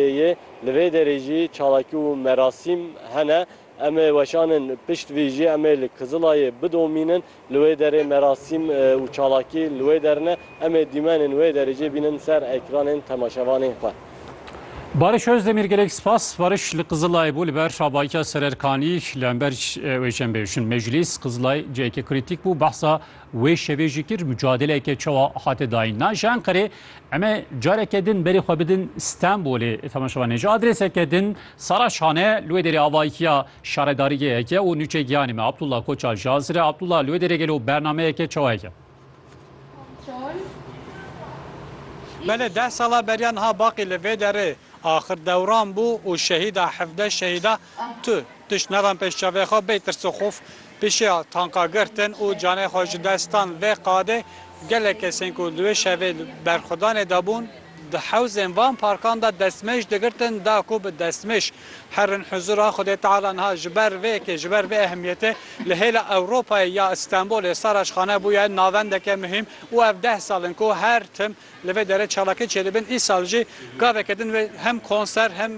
yê. Li vê derê jî çalakî û merasîm hene. Em ê weşanin pişt vî jî em ê li Kizilayê bidomînin. Li wê derê merasîm û çalakî li wê der ne. Em ê dîmenên wê derê jî bînin ser ekranên temaşevanên xwe. Barış Özdemir Gelek spas Barış li Kizilayê bû li ber Şabaykya Sererkanî li hember wê çem bê. Jin Meclîs Kizilay cihekê krîtîk bû, behsa Wê şevê jî kir mucadeleke çawa hate dayîn. Na ji Enqerê em ê careke din berê xwe bidin Stenbolê. Temaşe bane ji adrêseke din Saraçhan e li wê derê avahiya şaredarîgehek e û nûçe giyanê me Abdullah Koçal ji Azir e. Abdullah li wê derê gelo bernameyeke çawa heke? Belê deh sala beriya niha baqî li vê derê axir dewran bû û şehîda hevdeh şehîda Tu tişt nedan pêş çavê xwe bê tirs û xof pişiya tanka girtin û canê xwe ji destan vê qadê. Gelek kesên ku di wê şevê li berxwedanê de bûn, di hewzên van parkan de destmêj digirtin da ku bi destmêj herin huzûra Xwedê Teala. Niha ji ber vê yekê, ji ber vê ehemiyetê li hêla Ewropayê ya Stenbolê Saraçxane bûye navendeke muhîm û ev deh sal in ku her tim Li vê derê çalakê Çêlibin îsal jî gaveke din wê hem konser hem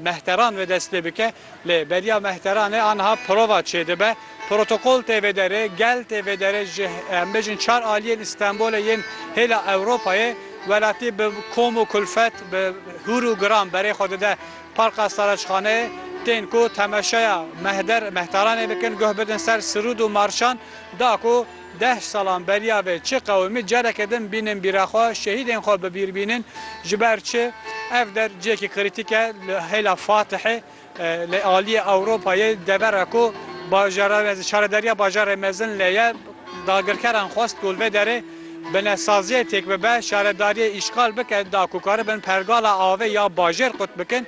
mehteran wê dest pê bike. Lê beriya mehteranê aniha prova çêdibe. Protokol tê vê derê, gel tê vê derê ji em bêjin çar aliyên Îstenbolê yên hêla Ewropayê. Welatî bi kom û kulfet, bi hûr û giran berê xwe dide Parka Saraçxaneyê. Tên ku temeşeya mehder mehteranê bikin, guh bidin ser sirûd û marşan da ku, Deh salan beriya vê çi qewimî careke din bînin bîra xwe, şehîdên xwe bi bîr bînin. Ji ber çi? Ev der cihekî krîtîk e li hêla Fatihê, li aliyê Ewropayê, devera ku Şaredariya Bajarê Mezin lê ye. Dagirkeran xwestbû li vê derê binesaziyê têk bibe, şaredariyê îşxal bike da ku karibin pergala avê ya bajêr qut bikin.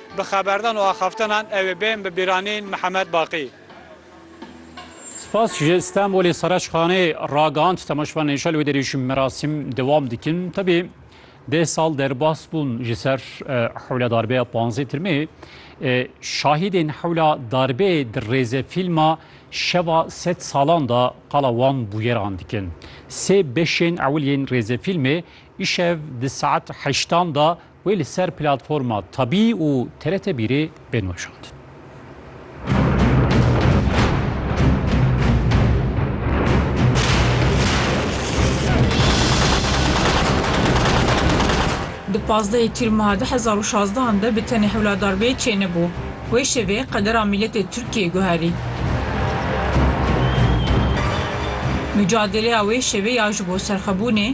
Bi xeberdan û axaftinan ew ê bên bi bîranîn Mihemed Baqî. Spas ji Stenbolê Sereşxanê ragihand temaşvan Neşel wê derê jî merasîm dewam dikin. Tevî deh sal derbas bûn ji ser hewla darbeya panzdeh tirmê. Şahîdên hewla darbeyê di rêze fîlma Şeva sed salan de qala wan bûyeran dikin. Sê beşên ewil yên rêzefîlmê îşev di saet heştan de Wê li ser platforma Tabî û TRT Bîrê bên weşandin. Di pazdehê Tîr Meha du hezar û şazdehan de bi tenê hewladar bê çê nebû. Wê şevê qedera mîletê Tirkiyê guherî. Mûcadeleya wê şevê ya ji bo serxwebûnê,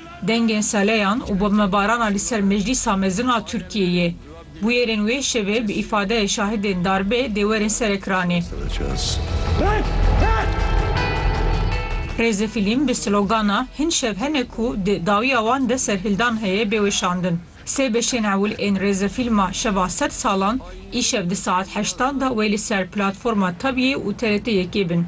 Dengên seleyan û bombebarana li ser Meclîsa Mezin a Tirkiyeyê. Bûyerên wê şevê bi îfadeyê şahidên darbê dê werin ser ekranê. Rêzefîlm bi slogana Hin şev hene ku di dawiya wan de serhildan heye bê weşandin. Sê beşên ewil ên rêzefîlma Şeva Sed Salan îşev di saet heştan de wê li ser platforma Tabiyê û TRT yekê bin.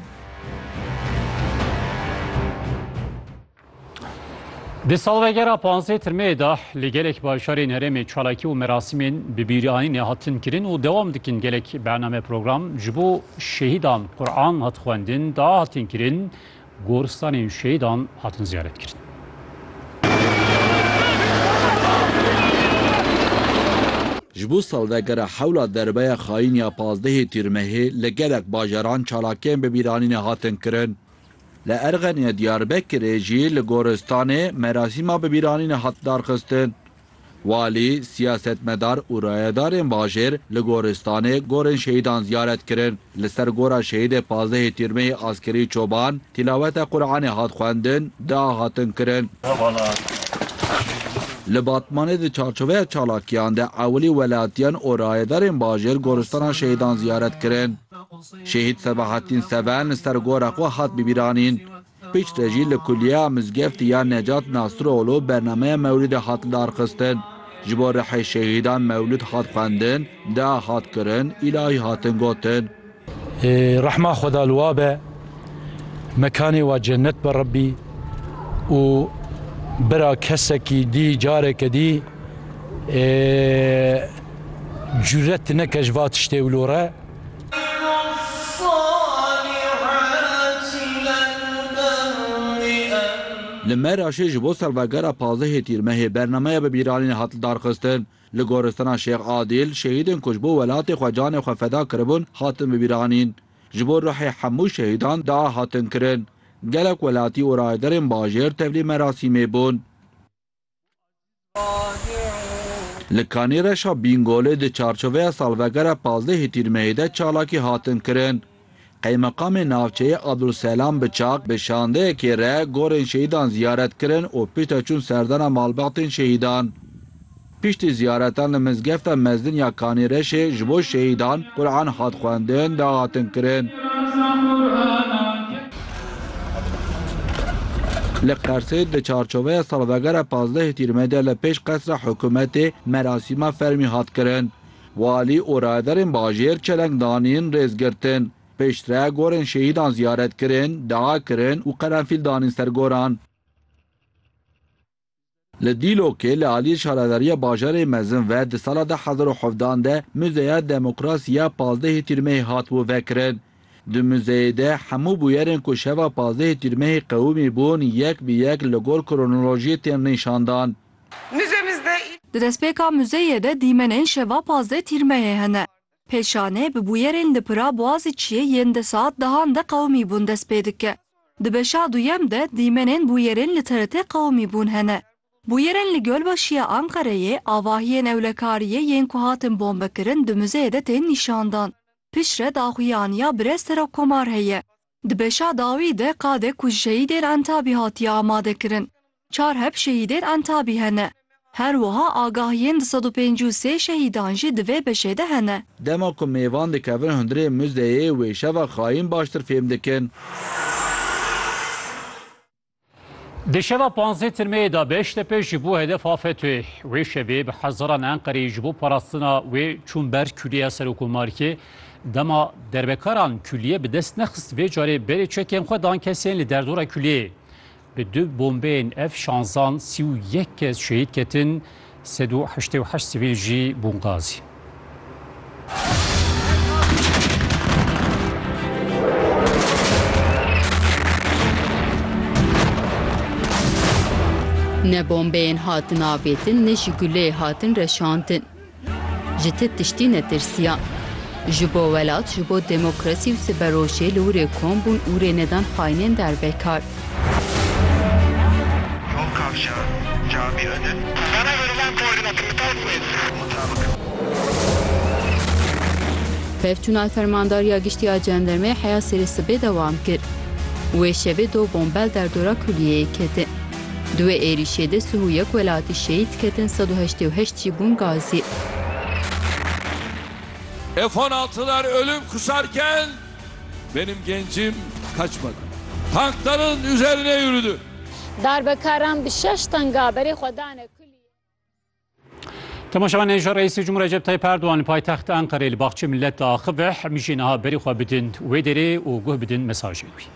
Di salvegera panzdeh Tirmeyê de li gelek bajarên herêmê çalakî û merasimên bi bîranînê hatin kirin û dewam dikin. Gelek bername program ji bo şehîdan Quran hat xwendin, dua hatin kirin, goristanên şehîdan hatin ziyaret kirin. Ji bo salvegera hewla derbeya xayîn ya panzdehê Tîrmehê li gelek bajaran çalakiyên bi bîranînê hatin kirin. Li Erxenê, Diyarbekirê jî li goristanê merasîma bibîranînê hat darxistin. Walî, siyasetmedar û rayedarên bajêr li goristanê gorên şehîdan ziyaret kirin. Li ser gora şehîdê pazdehê Tîrmehî Askerî Çoban tîlaweta Quranê hat xwendin, dua hatin kirin. Li Batmanê di çarçoveya çalakiyan de ewilî welatiyan û rayedarên bajêr goristana şehîdan ziyaret kirin. Şehîd Sebahattin Seven li ser gora xwe hat bibîranîn. Piştre jî li Kuliyeya Mizgeftî ya Necat Nasroglu bernameya mewlidê hat lidarxistin. Ji bo rihê şehîdan mewlid hat xwendin, dua hat kirin, îlahî hatin gotin. Rehma Xweda li wa be, mekanê wa cennet be Rebbî û bira kesekî dî careke dî. Cüret neke ji va tiştê wilo re. Li Meraşê ji bo salvegera pazdehê Tîrmehê bernameya bibîranînê hat lidarxistin. Li goristana Şêx Adîl şehîdên ku ji bo welatê xwe canê xwe feda kiribûn hatin bibîranîn. Ji bo ruhê hemû şehîdan dua hatin kirin. Gelek welatî û rayedarên bajêr tevlî merasîmê bûn. Li Kanê Reşa Bîngolê di çarçoveya salvegera pazdehê tîrmeyê de çalakî hatin kirin. Qeymeqamê navçeyê Abdulselam Biçak bi şandeyekê re gorên şehîdan ziyaret kirin û piştre çûn serdana malbatên şehîdan. Piştî ziyaretan li mizgefta mezin ya Kanê Reşê ji bo şehîdan Quran hat xwendin, dahatin kirin. Li Qersê di çarçoveya salvegera pazdeh Tîrmê de li pêş qesra hikûmetê merasîma fermî hat kirin. Walî û rayedarên bajêr çeleng danîn, rêz girtin. Piştre gorên şehîdan ziyaret kirin, dua kirin û qerenfîl danîn ser goran. Li Dîlokê li aliyê Şaredariya Bajarê Mezin ve di sala du hezar û hevdeh an de Muzeya Demokrasî ya pazdehê Tîrmehê hat bo vekirin. Di muzeyê de hemû bûyerên ku şeva pazdehê Tîrmehê qewimî bûn yek bi yek li gor kronolojiyê tên nîşandan. Di destpêka muzeyê de dîmenên şeva pazdeh Tîrmehê hene. Pêşanê bi bûyerên di pira Boazîçiyê yên deh saet dehan de qewimî bûn dest pê dike. Di beşa duyem de dîmenên bûyerên li TRT'ê qewimî bûn hene. Bûyerên li Gölbaşiya Anqereyê, avahiyên ewlekariyê yên ku hatin bombekirin di muzeyê de tên nîşandan. Piştre daxuyaniya Birêz Serokkomar heye. Di beşa dawî de qadek ku ji şehîdên Entabî hatiye amadekirin, çar heb şehîdên Entabî hene. Her wiha agahiyên di sed û pêncî û sê şehîdan jî di vê beşê de hene. Dema ku mêvan dikevin hundirê muzeyê wê şeva xayîn baştir fêm dikin. Di şeva panzdeh tirmeyê de Beştepe ji bo hedefa FETÖ'yê wê şevê bi hezaran Enqereyê ji bo parastina wê çûn ber Kulîya Serokomarkê. Dema derbekaran kulîyê bi dest nexist vê carê berê çekên xwe dan kesên li derdora kulîyê. Bi du bombeyên F şanzan sî û yek kes şehîd ketin. Sed û heştê û heşt sivîl jî bûn gazî. Ne bombeyên hatin avêtin ne jî guleyê hatin reşandin. Ji ti tiştî netirsiya. Ji bo welat, ji bo demokrasî û siberojê li wrê kom bûn û rê nedan xaînên dervekar. Pevçûna Fermandariya Giştî ya Cendermeyê heya serê sibê dewam kir. Wê şevê do bombel derdora kulîyeyê ketin. Di wê êrîşê de sih û yek welatî şehîd ketin sed û heştê û heşt jî bûn gazî. F on altılar ölüm kusarken benim gencim kaçmadı. Tankların üzerine yürüdü. Darbekaran bi şeş tanga berê xwe dane kulîyê. Temaşevan hêja Reîsê Cumhurê Recep Tayyip Erdogan li paytexta Enqerê li baxçeyê millet de axive, hemî jê niha berê xwe bidin wê derê û guh bidin mesajê wî.